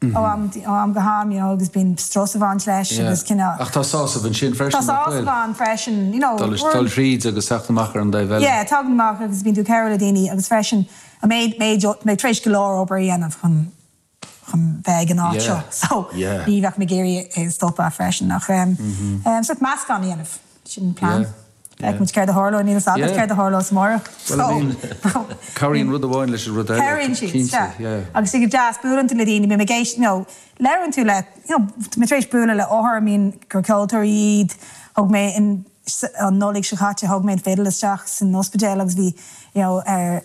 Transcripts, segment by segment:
ó am ó am go ham, you know, agus bíonn strus ag baint leis agus cinneadh. Ach tá sásamh ansin freisin, nach bhfuil? Tá sásamh ann freisin, you know, we're. Dul thríd agus teacht amach ar an dtaobh eile. Yeah, teacht amach agus bíonn tú ag cabhrú le daoine agus freisin a mhéid, méid, mé tar éis go leor obair a dhéanamh chun, chun bheith ag an áit seo, so ní bheadh mé ag iarraidh é a stopadh freisin ach, so meascán a dhéanamh. Sin an plean. Feicimid céard a tharlóidh. Níl fhios agat céard a tharlós amárach. Bhuel, I mean, cabhraíonn rud amháin leis an rud eile. Cabhraíonn siad, sea. Agus sin go deas, buaileann tú le daoine, bím ag éist, you know, labhrann tú le, you know, tá mé tar éis bualadh le hothair, I mean, gur ceoltóirí iad, thug mé an Nollaig seo chaite, thug mé an fidil isteach san ospidéal agus bhí, you know, er,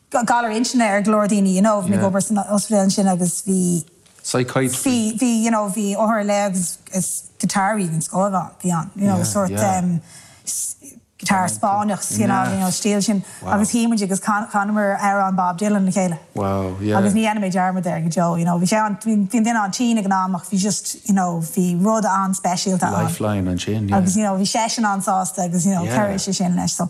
galar intinne ar go leor daoine you know ag obair san ospidéal ansin agus bhí bhí bhí you know bhí othair le agus is guitar even scór ann bhí ann you know sórt guitar Spáinneach you know you know stíl sin agus shuí muid agus chanamar amhrán Bob Dylan le chéile agus ní dhéanfaidh mé dearmad air go deo you know bhí sé an- bhí an duine an-tinn ag an am ach bhí just you know bhí rud an-speisialta ann lifeline ansin agus you know bhí seisean an-sásta agus you know chuir sé sin leis so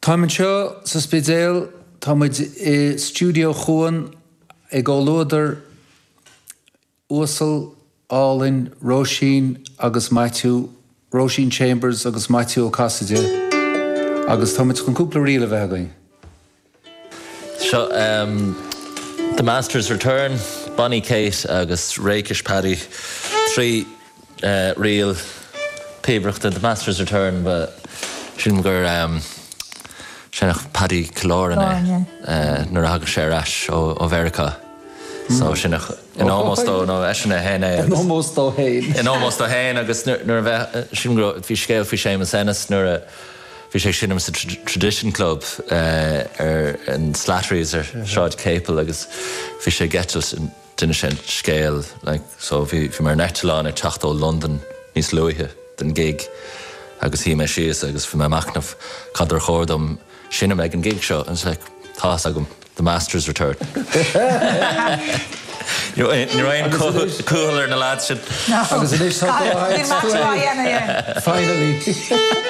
Táim anseo sa Spidéal, tá muid i Stiúideo Cuan i gcomhluadar uasal, álainn Róisín agus Maitiú, Róisín Chambers agus Maitiú Ó Casaide agus tá muid chun cúpla ríl a bheith againn. Seo The Masters Return, Bonny Kate agus Rakish Paddy, trí. ríl píobaireachta the master's return ba shine gur sheinneadh Paddy Killoran é nuair a thagadh sé ar ais ó Mheiriceá so sheinneadh in ómós dó nó eisean é féin é agus. in ómós dó féin. in ómós dó féin agus nuair a bheith sin go raibh bhí scéal faoi Séamus Ennis nuair a bhí sé ag seinm sa Tradition Club ar an Slattery's ar Shráid Capel agus bhí sé ag eitilt in d'inis sé an scéal like so bhí bhí mé ar an eitleán ag teacht ó Londain níos luaithe den gig agus shuigh mé síos agus bhí mé ag machnamh cad ar chóir dom seinnt ag an gig seo agus like tá fhios agam The Masters Return you know eh ní raibh aon cúl cúl ar na lads sin agus anois tá go ahead finally